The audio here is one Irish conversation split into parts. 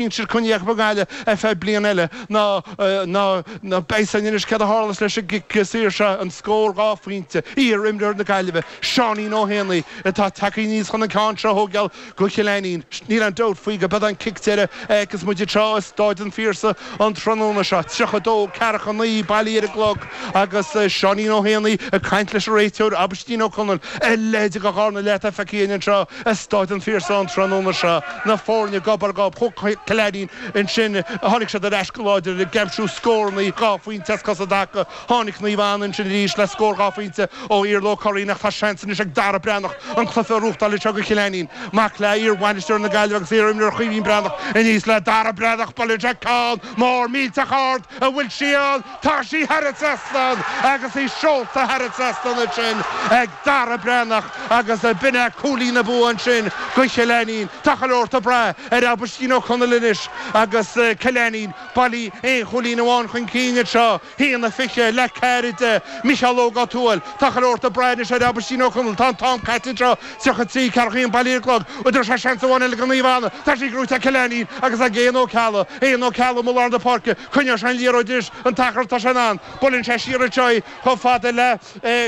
Insíonn Coinní Each Mhunghaile ar feadh bliana eile ná ná beidh sin anois céard a tharlas leis an gcic saor seo, an scór dhá phointe. Iar-imreoir na Gaillimhe, Seáinín Ó hÉanaí, atá tagtha aníos chun an ceann seo a thógáil go Cill Ainnín. Níl aon dabht faoi gurb é an cic deireadh a fheicfeas muid anseo i Stáid an Phiarsaigh an tráthnóna seo. 32, 49 bailí ar an gclog agus Seáinín Ó hÉanaí ag caint leis an réiteoir, Aibhistín Ó Conaill, a leithéid de dhráma atá feicthe againn anseo. I Stáid an Phiarsaigh an tráthnóna seo na foirne gob ar ghob, chuaigh Cill Ainnín ansin, tháinig siad ar ais go láidir agus ag aimsiú scórannaí dhá phointe as cosa i dtaca. Tháinig Naomh Anna ansin arís le scór dhá phointe ó Iarla Ó Curraoin ach tá seans anois ag Dara Breathnach an cluiche a ghnóthachtáil anseo go Cill Ainnín. Mac le iarbhainisteoir na Gaillimhe agus iarimreoir Chaoimhín Breathnach aníos le Dara Breathnach, buaileann sé ceann mór millteach ard an bhfuil sí ann! Tá sí thar an trasnán agus í seolta thar an trasnán ansin ag Dara Breathnach agus ab in é cúilín an bhua ansin go Cill Ainnín. Tá chuile shórt ag brath ar Aibhistín Ó Conaill anois agus Cill Ainnín bailí aon chúilín amháin chun cinn anseo. hAon a fiche, le ceathair a deich. Micheál Óg Ó Tuathail, tá chuile shórt ag brath anois ar Aibhistín Ó Conaill, tá an t-am caite anseo. 33, 41 bailí ar an gclog, an dtabharfaidh sé seans amháin eile go Naomh Anna tá sí gnóthaithe ag Cill Ainnín agus ag Eoghan Ó Ceallaigh, Eoghan Ó Ceallaigh, amuigh i lár na páirce, coinneoidh sé an liathróid anois an t-achar atá sé in ann, buaileann sé siar anseo í chomh fada le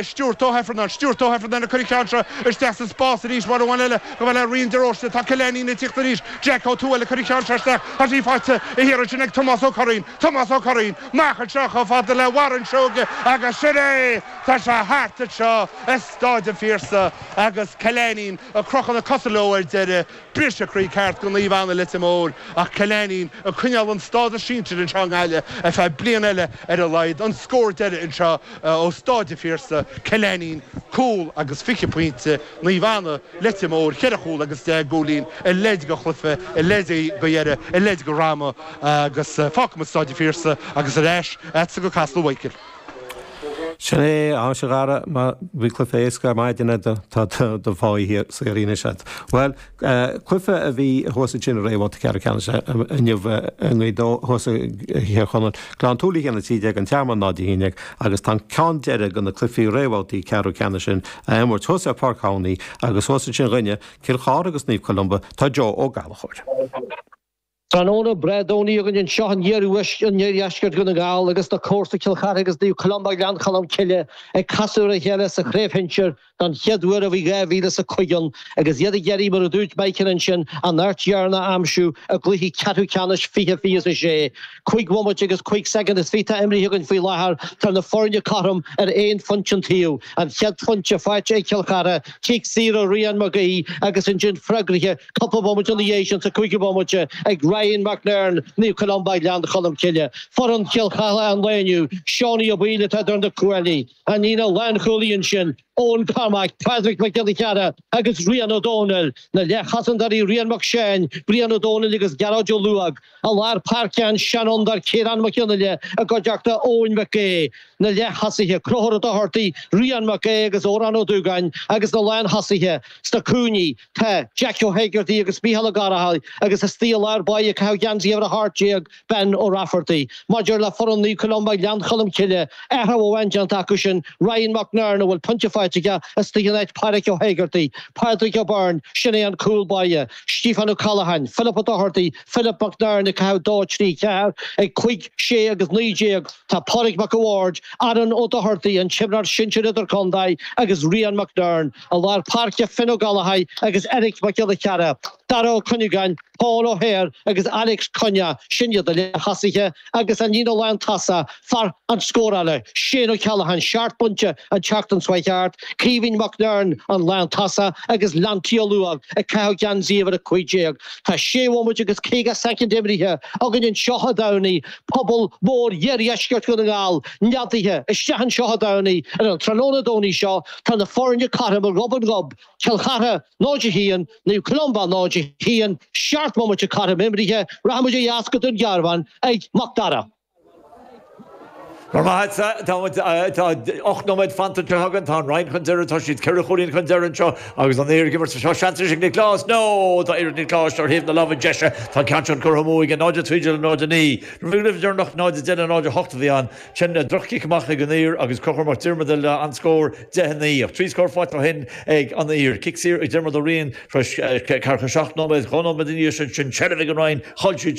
Stuart Ó hIfearnáin, Stuart Ó hIfearnáin ag cur an ceann seo isteach sa spás arís, uair amháin eile gabh a le Rian de Róiste, tá Cill Ainnín ag tíocht arís, Jeaic Ó Tuathail ag cur an ceann seo isteach, tá sí faighte thiar ansin ag Tomás Ó Curraoin, Tomás Ó Curraoin, amach anseo chomh fada le Warren Seoige agus sin é, tá sé thart anseo. Stáid an Phiarsaigh agus Cill Ainnín ag crochadh na cosa leo ar deireadh. Briseadh croí ceart do Naomh Anna Leitir Móir ach Cill Ainnín ag coinneáil an stádas sinsir anseo i nGaillimh ar feadh bliain eile ar a laghad. An scór deiridh anseo ó Stáid an Phiarsaigh, Cill Ainnín, cúl agus fiche pointe, Naomh Anna, Leitir Móir, ceithre chúl agus deich gcúilín a leithéid de chluiche, a leithéid de dheireadh, a leithéid de dhráma agus fágfaidh muid Stáid an Phiarsaigh agus ar ais agatsa go Casla, a Mhichael. Sin é, anois a Dhara, má bhí cluife éasca ar maidin agat tá do pháí saothraithe anois agat. Bhuel, cluife a bhí thuas ansin i réamhbhabhta ceathrú ceannais inniu i nGaoth Dobhair thuas i dTír Chonaill, Gleann tSúilí a haon a trí déag an Tearmann náid a haon déag agus tá an ceann deireadh de na cluichí réamhbhabhtaí ceathrú ceannais sin á imirt thuas ar Pháirc an Tamhnaigh agus thuas ansin dhúinne Cill Chartha agus Naomh Columba tá Joe Ó Gallchóir. Tráthnóna breá Domhnaigh againn anseo in iardheisceart Dhún na nGall agus na comharsa Cill Chartha agus Naomh Columba Ghleann Cholm Cille ag casadh ar a chéile sa chraobh shinsir don chéad uair ó bhí 2005 ann agus iad ag iarraidh, mar a dúirt Michael ansin, an áit dheireanach a aimsiú i gcluiche ceathrú ceannais fiche, fiche is a sé, cúig bhomaite agus cúig soicind is fiche atá imrithe againn faoi láthair. Tá na foirne cothrom ar aon phointe an taobh, an chéad phointe faighte ag Cill Chartha, cic saor ó Ryan Mac Aodha agus ansin freagraithe, cupla bomaite ina dhiaidh sin sa cúigiú bomaite ag Ryan McNern, Naomh Columba, Gleann Cholm Cille, foireann Chill Chartha an lae inniu, Seánie Ó Baoill atá idir na cuaillí, an líne lánchúlaí ansin, Eoghan Cormack, Pádraig Mac Giolla Chearra agus Rian Ó Dónaill, na leathchosantairí Rian Mac Seáin, Brian Ó Dónaill agus Gearóid Ó Luaidh, i lár páirce an seanfhondúir Ciarán Mac Fhionnghaile i gcuideachta Eoin Mhic Aoidh, na leath-thosaithe, Conchúr Ó Dochartaigh, Rian Mac Aoidh agus Odhrán Ó Dúgáin agus na lán-thosaithe sna cúinní. Tá Jackie Ó hÉigeartaigh agus Micheál Ó Garbháin agus istigh i lár báire ag caitheamh geansaí uimhir a hocht déag Ben Ó Raifeartaigh. Maidir le foireann Naomh Columba Gleann Cholm Cille, athrú amháin déanta acu sin, Ryan McNern a bhfuil pointe faighte aige istigh in áit Páraic Ó hÉigeartaigh, Pádraig Ó Beirn, sin é an cúl báire, Stíofán Ó Ceallacháin, Philip Ó Dochartaigh, Philip McNern ag caitheamh dó trí ceathair ag cúig, sé agus naoi déag tá Pádraig Mac a Bhaird, Aaron Ó Dochartaigh, an t-imreoir sinsir idirchontae agus Ryan McNern. I lár páirce, Fionn Ó Gallchóir agus Eric Mac Giolla Chearra, Dara Ó Cuinneagáin, Paul O'Hare agus Alex Cunnea, sin iad na leath-thosaithe, agus an líne lántosaigh, fear na scórála, Shane O'Callaghan, seacht bpointe an tseachtain seo thart, Caoimhín McNern, an lántosaí, agus Lanty Ó Luaidh, ag caitheamh geansaí uimhir a cúig déag. Tá sé bhomaite agus caoga soicind imrithe againn anseo i dTamhnaigh, pobal mór iardheisceart Dhún na nGall neadaithe isteach anseo i dTamhnaigh ar an tráthnóna Domhnaigh seo, Tá na foirne cothrom gob ar ghob, Cill Chartha 0, 1, Naomh Columba 0, 1, seacht mbomaite cothrom imrithe, rachaidh muid ó dheas go Dún Garbhán ag Mac Dara. Go raibh maith agat, tá ocht nóiméad fanta anseo againn, tá an Rinn chun deireadh, tá siad ceithre chúilín chun deireadh anseo agus an Uidhir ag imirt anseo, seans anois ag Nioclás, nó tá iarracht Niocláis ar thaobh na láimhe deise, tá an ceann seo curtha amú aige, 0, 13 le 0, 9. Uair dheireanach, 0, 10 le 0, 8 a bhí ann. Sin droch-chic amach ag an Uidhir agus Conchúr Mac Diarmada le an scór 10, 9. Ach trí scór faighte ó shin ag an Uidhir. Cic saor ag Diarmuid Ó Riain tar éis ceathracha seacht nóiméad. Dhá nóiméad ina dhiaidh sin, sin seilbh ag an Rinn. Chaill siad